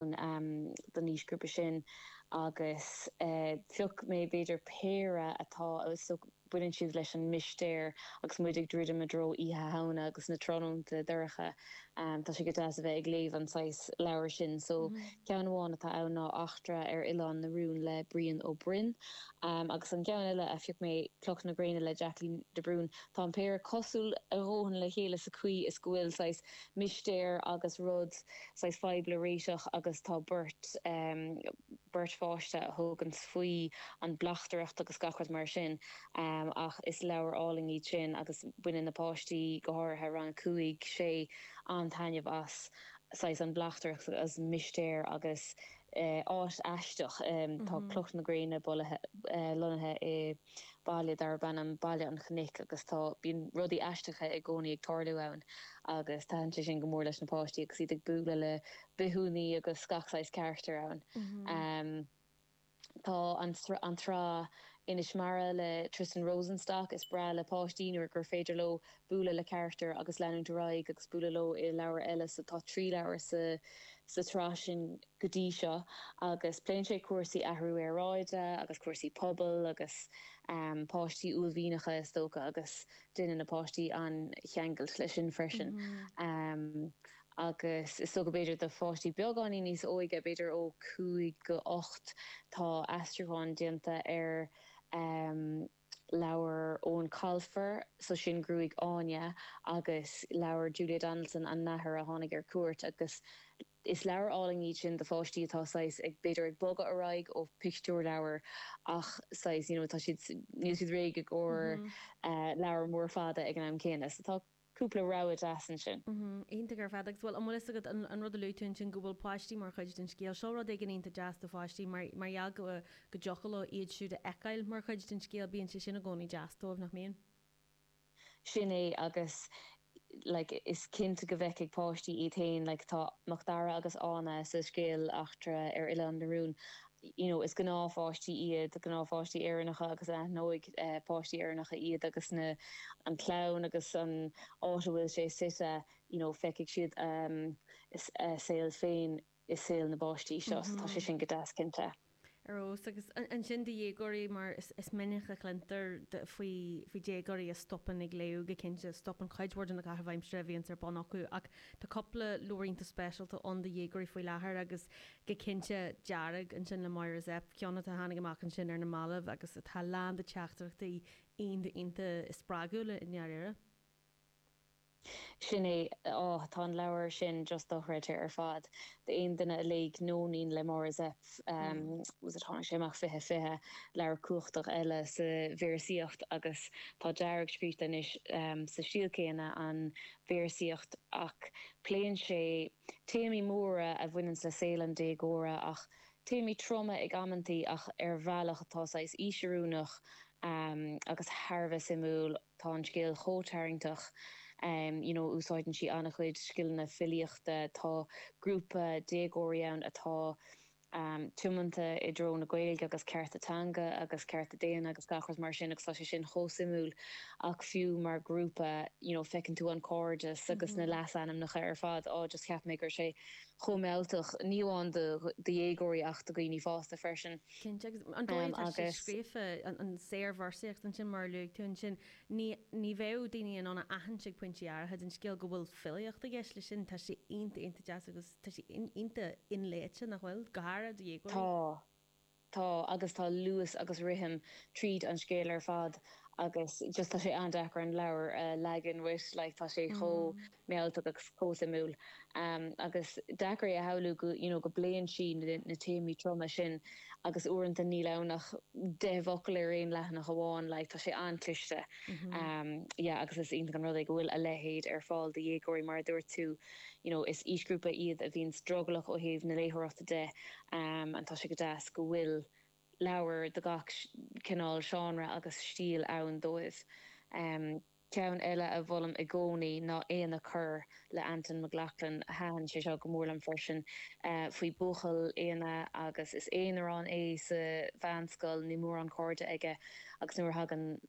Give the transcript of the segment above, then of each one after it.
don aoisghrúpa sin agus phioc mé b'fhéidir péire atá, so baineann siad leis an mistéir agus muid ag druidim i dtreo Oíche Shamhna agus na tráthnónta dorcha, tá sé go deas a bheith ag léamh an saghas leabhair sin. So ceann amháin atá ann ná Eachtra ar Oileán na Rún le Brian Ó Broin agus an ceann eile a phioc mé Cloch na Gréine le Jacqueline de Brún. Tá an péire cosúil a dhóthain le chéile sa chaoi is go bhfuil saghas mistéir agus rud saghas fadhb le réiteach agus tá beirt beirt pháiste a thuganns faoi an mbleachtaireacht agus gach rud mar sin ach is leabhair álainn iad sin agus baineann na páistí go háirithe rang a cúig sé an-taitneamh as saghas an bleachtaireacht agus mistéir agus áit aisteach tá cloch na gréine lonnaithe i baile darb ainm Baile an Chnoic agus tá, bíonn rudaí aisteacha i gcónaí ag tarlú ann agus taitníonn sé sin go mór leis na páistí agus iad ag bualadh le bithiúnaigh agus gach saghas carachtar ann. Tá an, an tsraith Inis Mara le Tristan Rosenstock, is breá le páistí nuair gur féidir leo bualadh le carachtair agus leanúint ar aghaidh agus bualadh leo i leabhair eile so tá trí leabhar sa tsraith sin go dtí seo agus pléann sé cúrsaí athrú aeráide agus cúrsaí pobail agus páistí uaillmhianacha is dócha agus déanann na páistí an-cheangal leis sin freisin agus is dócha b'fhéidir do pháistí beagáinín níos óige b'fhéidir ó 5-8 tá aistriúchán déanta ar. leabhar Eoin Colfer, so sin Gruaig Áine, agus leabhar Julia Donaldson, An Nathair a Tháinig ar Cuairt, agus is leabhair álainn iad sin do pháistí atá saghas ag, b'fhéidir ag bogadh ar aghaidh ó pictiúrleabhair ach saghas, you know, tá siad, níl siad réidh i gcomhair leabhar mór fada ag an am céanna. So tá. cúpla rogha deas ansin. Iontach ar fad. Agus, bhuel, an bhfuil fhios agat, an rud a luaigh tú ansin, go bhfuil páistí mar chuid den scéal, seo rud éigin iontach deas do pháistí mar mar gheall go go dtiocfadh leo iad siúd a fheiceáil mar chuid den scéal, bíonn sé sin i gcónaí deas dóibh, nach mbíonn? Sin é agus like is cinnte go bhfeicfidh páistí iad féin like tá Macdara agus Áine sa scéal Eachtra ar Oileán na Rún you know is gnáthpháistí iad, gnáthpháistí Éireannacha agus aithneoidh páistí Éireannacha iad agus na, an chlann agus an áit a bhfuil sé suite, you know feicfidh siad a saol féin i saol na bpáistí seo so tá sé sin go deas cinnte. Ar fheabhas. Agus ansin do dhéagóirí mar is minic a chluintear faoi déagóirí a stopann ag léamh go cinnte, stopann cuid mhór de na caithimh aimsire a bhíonns ar bun acu ach tá cúpla leabhar iontach speisialta ann do dhéagóirí faoi láthair agus go cinnte, Dearg, ansin le Máire Zepf, ceann a tháinig amach ansin ar na mallaibh agus atá lán de teachtaireachtaí iontach spreagúla i ndáiríre. Sin é, á, tá an leabhar sin díreach dochreidte ar fad d'aon duine a léigh Nóinín le Máire Zepf, was it, tháinig sé amach fiche, fiche, leabhar cumhachtach eile sa véarsaíocht agus tá Dearg scríte anois sa stíl céanna, an véarsaíocht ach pléann sé, téamaí móra a bhaineanns le saol an déagóra ach téamaí troma ag amanntaí ach ar bhealach atá saghas aoisoiriúnach agus thar a bheith suimiúil. Tá an scéal chomh tarraingteach you know úsáideann sí an-chuid scileanna filíochta. Tá grúpa déagóirí ann atá. tiomanta i dtreo na Gaeilge agus cearta teanga agus cearta daonna agus gach rud mar sin agus tá sé sin chomh suimiúil ach fiú mar grúpa you know feiceann tú an cairdeas agus na leasainmneacha ar fad á just cheap mé go raibh sé chomh mealltach ní amháin do do dhéagóirí ach do dhaoine fásta freisin Cinnte agus an dóigh atá sé agus. scríofa an an saorvéarsaíocht ansin mar a luaigh tú ansin ní ní bheadh daoine in ann a aithint ag pointí áirithe den scéal go bhfuil filíocht i gceist leis sin tá sé iontach iontach deas agus Tá sé iontach inléite, nach bhfuil? Go háirid do dhéagóirí. Tá. Tá. Agus tá luas agus rithim tríd an scéal ar fad agus just tá sé an-deacair an leabhar a leagan uait, like tá sé chomh mealltach agus chomh suimiúil. Agus deacair é a shamhlú go, you know, go bpléann sí na téamaí troma sin agus uaireanta níl ann ach deich bhfocal ar aon leathanach amháin, like tá sé an-chliste. Yeah, agus is iontach an rud é go bhfuil a leithéid ar fáil do dhéagóirí mar a dúirt tú. you know is aoisghrúpa iad a bhíonns drogallach ó thaobh na léitheoireachta de and tá sé go deas go bhfuil leabhair de gach cineál seánra agus stíl ann dóibh. Um ceann eile a mholaim i gcónaí ná Éanna Corr le Antain Mac Lochlainn. Thaitin sé seo go mór liom freisin. Uh faoi bhuachaill, Éanna, agus is aonarán é sa mheánscoil, níl mórán cairde aige agus nuair a thagann,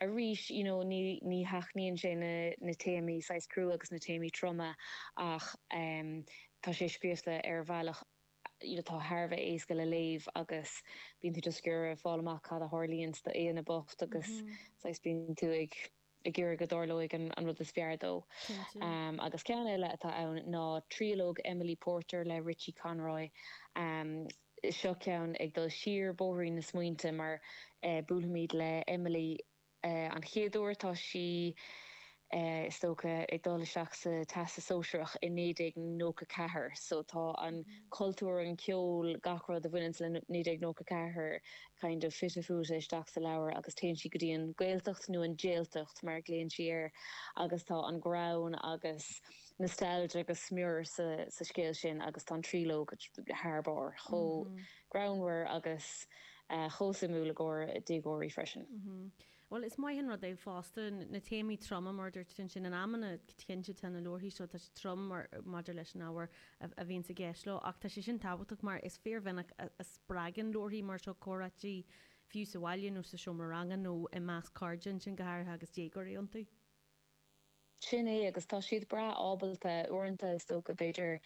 arís, you know, ní, ní sheachnaíonn sé na, na téamaí saghas crua agus na téamaí troma ach em, tá sé scríofa ar bhealach atá thar a bheith éasca le léamh agus bíonn tú just ag iarraidh fáil amach cad a tharlaíonns do Éanna bocht agus saghas bíonn tú ag, ag iarraidh go dtarlóidh an, an rud is fearr dó. Cinnte. Em, agus ceann eile atá ann ná triológ Emily Porter le Richie Conroy, em, Seo ceann ag dul siar bóithrín na smaointe mar buailimid le Emily an chéad uair. Tá sí, is dócha, ag dul isteach sa Teastas Sóisearach i 1994 so tá an cultúr, an ceol, gach rud a bhaineanns le 1994 kind of fite fuaite isteach sa leabhar agus téann sí go dtí an Gaeltacht nó an Jailtacht mar a ghlaonn sí air agus tá an greann agus nostalgia go smior sa scéal sin agus tá an tríológ thar barr chomh greannmhar agus chomh suimiúil i gcomhair déagóirí freisin. Bhuel, is maith an rud é fosta, na téamaí troma, mar a dúirt tú ansin, in amanna, cinnte, tá na leabharthaí seo, tá siad trom maidir leis an ábhar a bhíonns i gceist leo ach tá sé sin tábhachtach mar is fíormhinic a spreagann leabharthaí mar seo comhráití, fiú sa bhaile nó sa seomra ranga nó i measc cairde ansin, go háirithe agus déagóirí iontu. Sin é, agus tá siad breá ábalta uaireanta, is dócha. B'fhéidir,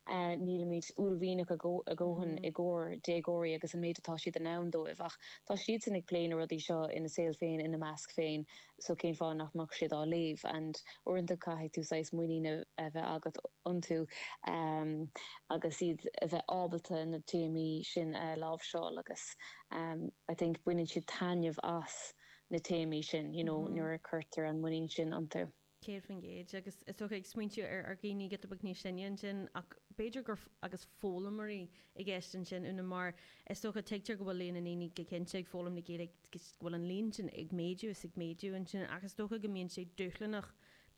nílimid uaillmhianach a dhóthain i gcomhair déagóirí agus an méid atá siad in ann dóibh, ach tá siadsan ag plé na rudaí seo ina saol féin, ina measc féin, so cén fáth nach mbeadh siad á léamh? And uaireanta caithfidh tú saghas muinín a bheith agat iontu agus iad a bheith ábalta na téamaí sin a láimhseáil agus I think baineann siad taitneamh as. na téamaí sin you know nuair a cuirtear an muinín sin iontu. Céad faoin gcéad agus is dócha ag smaointiú ar dhaoine giota beag níos sine ansin ach b'fhéidir gur agus foghlaimeoirí i gceist ansin Úna mar is dócha tuigtear go bhfuil líon na ndaoine go cinnte ag foghlaim na Gaeilge go bhfuil an líon sin ag méadú is ag méadú ansin ach is dócha go mbíonn sé dúshlanach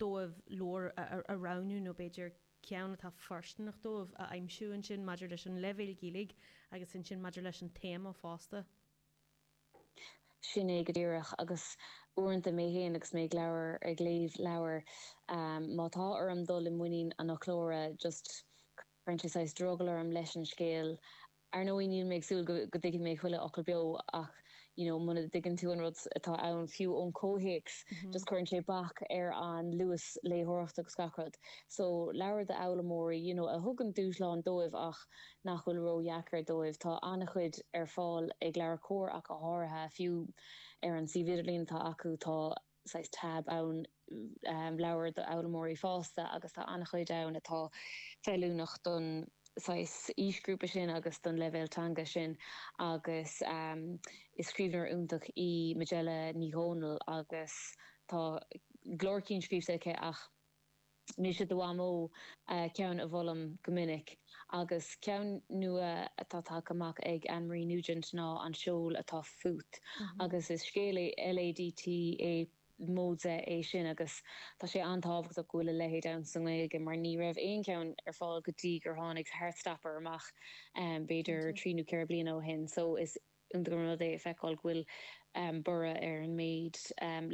dóibh leabhar a roghnú nó b'fhéidir ceann atá foirsteanach dóibh a aimsiú ansin maidir leis an leibhéal Gaeilge agus ansin maidir leis an téama fosta. Sin é go díreach. Agus uaireanta mé féin agus mé ag leabhar, ag léamh leabhair, má tá orm dul i muinín an fhoclóra, just, cuireann sé saghas drogall orm leis an scéal. Ar ndóigh, níl mé ag súil go go dtuigfidh mé chuile fhocal beo ach, you know, muna dtuigeann tú an rud atá ann, fiú ón chomhthéacs, just cuireann sé bac ar an luas léitheoireachta agus gach rud. So, leabhair d'fhoghlaimeoirí, you know, a thugann dúshlán dóibh ach, nach bhfuil ró-dheacair dóibh. Tá an-chuid ar fáil ag LeabhairCOMHAR ach go háirithe, fiú ar an suíomh idirlín atá acu tá saghas tab ann, Leabhair d'Fhoghlaimeoirí Fásta, agus tá an-chuid ann atá feiliúnach don saghas aoisghrúpa sin agus don leibhéal teanga sin agus is scríbhneoir iontach í Majella Ní Dhomhnaill agus tá go leor cinn scríbhte aici ach Mise do mhamó, ceann a mholaim go minic. Agus ceann nua atá tagtha amach ag Anne Marie Nugent ná An Seol atá Fút. Agus is scéal LADT é móide é sin agus tá sé an-tábhachtach go bhfuil a leithéid ann sa nGaeilge mar ní raibh aon cheann ar fáil go dtí gur tháinig Heartstopper amach b'fhéidir trí nó ceithre bliana ó shin. So is iontach an rud é a feiceáil go bhfuil borradh ar an méid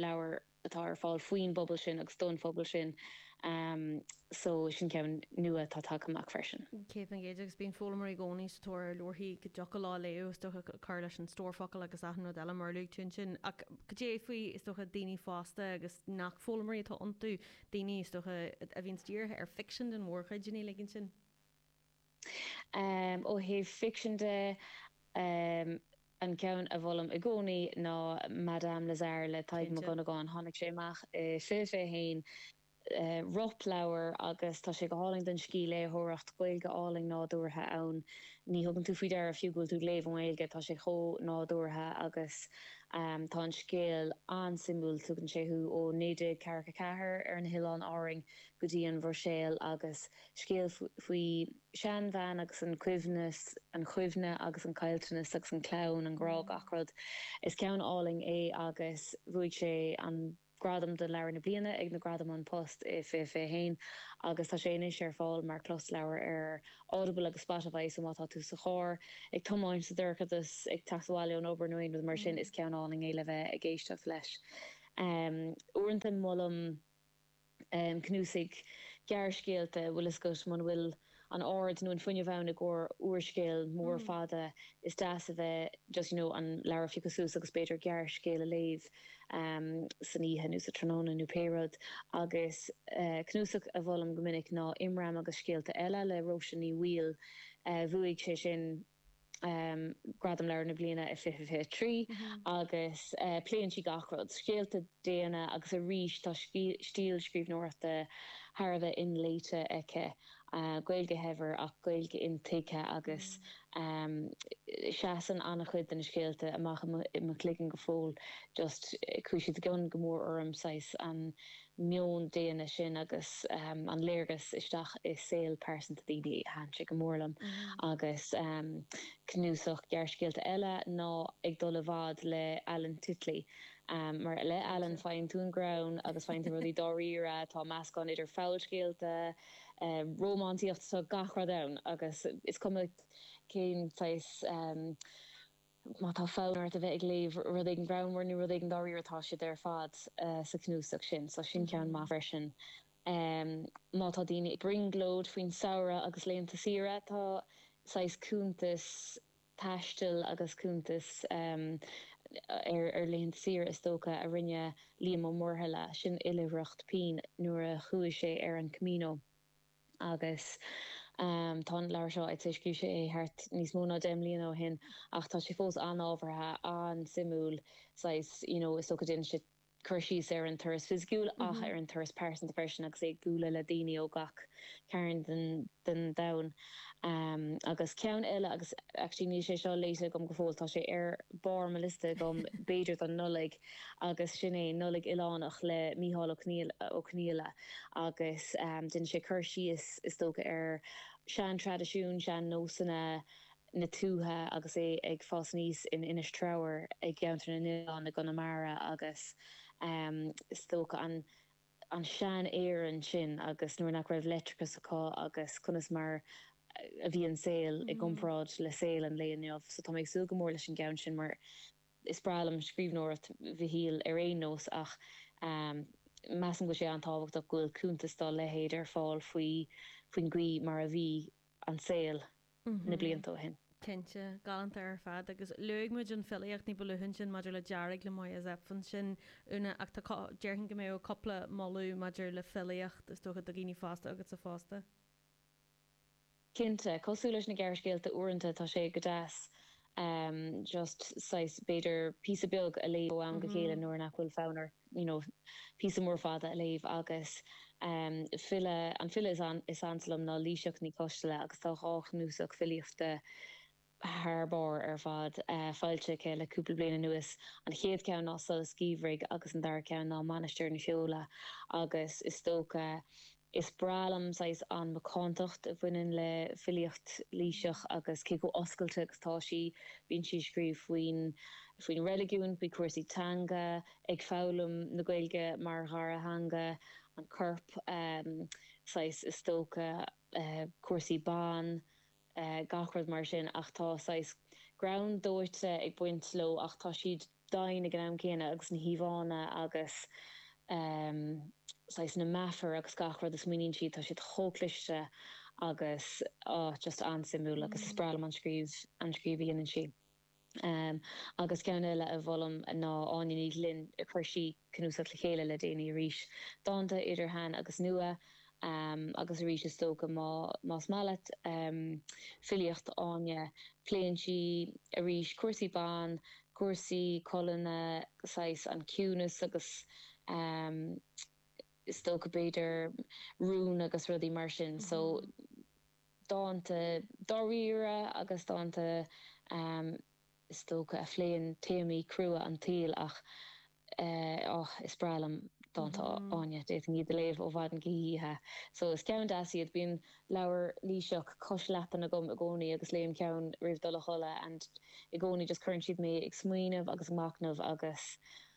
leabhar. atá ar fáil faoin bpobal sin agus don phobal sin so sin ceann nua atá tagtha amach freisin. Céad faoin gcéad agus bíonn foghlaimoirí i gcónaí sa tóir ar leabharthaí a dtiocfadh leo a léamh, is dócha, cur leis an stór focal agus achan rud eile mar a luaigh tú ansin. Ach cad é faoi, is dócha, daoine fásta agus nach foghlaimoirí atá iontu, daoine, is dócha, a bhíonns dírithe ar ficsean den mhórchuid, daoine uilig ansin? Ó thaobh ficsin de, an ceann a mholaim i gcónaí ná Madame Lazare le Tadhg Mac Dhonnagáin. Tháinig sé amach i 2021, rop-leabhar, agus tá sé go hálainn don scíthléitheoireacht, Gaeilge álainn nádúrtha ann. Ní thugann tú faoi deara fiú go bhfuil tú ag léamh i nGaeilge, tá sé chomh nádúrtha agus tá an scéal an-suimiúil. Tugann sé thú ó 1944 ar na hOileáin Árainn go dtí an Bhruiséil agus Scéal faoi sheanbhean agus a cuimhne, an chuimhne agus an caillteanas agus an clann, an grá, gach rud. Is ceann álainn é agus bhuaigh sé an gradam do Leabhar na Bliana ag na Gradaim An Post i 2021 agus tá sé anois ar fáil mar chlosleabhar ar Audible agus Spotify so má tá tú sa charr, ag tiomáint, sa dorchadas, ag teacht abhaile ón obair nó aon rud mar sin, is ceann álainn é le bheith ag éisteacht leis. Uaireanta molaim. Cnuasaigh gearrscéalta, bhfuil a fhios agat, muna bhfuil an aird nó an fuinneamh ann i gcomhair úrscéal mór fada, is deas a bheith just, you know, an leabhar a phiocadh suas agus b'fhéidir gearrscéal a léamh san oíche nó sa tráthnóna nó pé rud. Agus cnuasach a mholaim go minic ná Imram agus Scéalta Eile le Róise Ní Bhaoill. Bhuaigh sé sin Gradam Leabhar na Bliana i 2023 agus pléann sí gach rud, scéalta daonna agus arís tá stíl scríbhneoireachta thar a bheith inléite aici, Gaeilge shaibhir ach Gaeilge intuigthe agus seasann an-chuid de na scéalta amach i mo chloigeann go fóill just chuaigh siad i gcion go mór orm saghas an meon daonna sin agus an léargas isteach i saol pearsanta daoine thaitin sé go mór liom agus cnuasach gearrscéalta eile ná Ag Dul i bhFad le Alan Titley. Mar le hAlan, faigheann tú an greann agus faigheann tú rudaí dáiríre, tá meascán idir fabhalscéalta, rómánsaíocht, so gach rud ann agus is cuma cén saghas. Má tá fonn ort a bheith ag léamh rud éigin greannmhar nó rud éigin dáiríre, tá siad ar fad sa chnuasach sin, so sin ceann maith freisin. Má tá daoine ag brionglóid faoin samhradh agus laethanta saoire, tá saghas cuntas taistil agus cuntas ar laethanta saoire is dócha, a rinne Liam Ó Muirthile, sin oilithreacht pinn nuair a chuaigh sé ar an Camino. agus tá an leabhar seo. Scríobh sé é thart níos mó ná deich mbliana ó shin ach tá sé fós an-ábhartha, an-suimiúil, saghas, you know, is dócha déanann sé cur síos ar an turas fisiciúil ach ar an turas pearsanta freisin agus é ag bualadh le daoine ó gach cearn den domhan. Agus ceann eile agus actually níl sé seo léite agam go fóill, tá sé ar barr mo liosta agam, b'fhéidir don Nollaig, agus sin é Nollaig Oileánach le Micheál Ó Conghaile agus déanann sé cur síos is dócha ar shean-traidisiúin, sean-nósanna na tuaithe agus é ag fás aníos in Inis Treabhair i gCeantar na nOileán i gConamara agus is dócha an tsean-Éirinn sin agus nuair nach raibh leictreachas acu agus conas mar a bhí an saol i gcomparáid le saol an lae inniu so tá mé ag súil go mór leis an gceann sin mar Is breá liom scríbhneoireacht Mhichíl ar aon nós ach measaim go bhfuil sé an-tábhachtach go bhfuil cuntas dá leithéid ar fáil faoin gcaoi mar a bhí an saol na blianta ó shin. Cinnte. Galánta ar fad. Agus luaigh muid an filíocht ní ba luaithe ansin maidir le Dearg le Máire Zepf ansin, Úna, ach tá, déarfainn go mbeadh cúpla moladh maidir le filíocht is dócha do dhaoine fásta agatsa fosta. Cinnte, cosúil leis na gearrscéalta uaireanta tá sé go deas just saghas b'fhéidir píosa beag a léamh ó am go chéile nuair nach bhfuil fonn ort you know píosa mór fada a léamh agus file, an file is ansa liom ná Laoighseach Ní Choistealbha agus tá dhá chnuasach filíochta thar barr ar fad, foilsithe aici le cúpla bliain anuas. An chéad cheann ná Solas Geimhridh agus an dara ceann ná Mainistir na Feola agus is dócha is breá liom saghas an macántacht a bhaineann le filíocht Laoighsí agus cé chomh oscailte agus tá sí. Bíonn sí ag scríobh faoin faoin reiligiún, faoi chúrsaí teanga, ag foghlaim na Gaeilge mar dhara theanga, an corp, saghas is dócha cúrsaí ban, gach rud mar sin ach tá saghas greann dóite ag baint leo ach tá siad domhain ag an am céanna agus na híomhánna agus saghas na meafair agus gach rud a smaoiníonn siad tá siad chomh cliste agus just an-suimiúil agus is breá liom an scríobh an scríobh a dhéanann sí. agus ceann eile a mholfainn ná Áine Ní Ghlinn, chuir sí cnuasach le chéile le déanaí arís, dánta idir shean agus nua, agus arís is dócha más maith leat filíocht Áine, pléann sí arís cúrsaí ban, cúrsaí colainne, saghas an ciúnas agus is dócha b'fhéidir rún agus rudaí mar sin. So. dánta dáiríre agus dánta is dócha a phléann téamaí crua an tsaoil ach oh is breá liom dánta Áine, d'fhéadfainn iad a léamh ó mhaidin go hoíche so is cinn deasa iad. Bíonn leabhar léi-se cois leapan agam i gcónaí agus léim ceann roimh dul a chodladh and i gcónaí just cuireann siad mé ag smaoineamh agus ag machnamh agus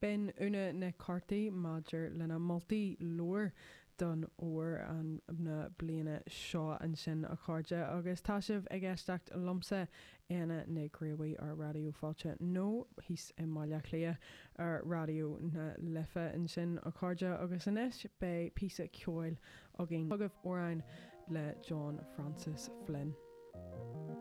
B'in Úna Nic Cártaigh maidir lena moltaí leabhair d'fhómhar na bliana seo. Ansin, a chairde, agus tá sibh ag éisteacht liomsa, Éanna Mac Críofaigh ar Raidió Fáilte, nó thíos i mBaile Chliath ar Raidió na Life, ansin, a chairde, agus anois, beidh píosa ceoil againn chugaibh, amhrán le John Francis Flynn.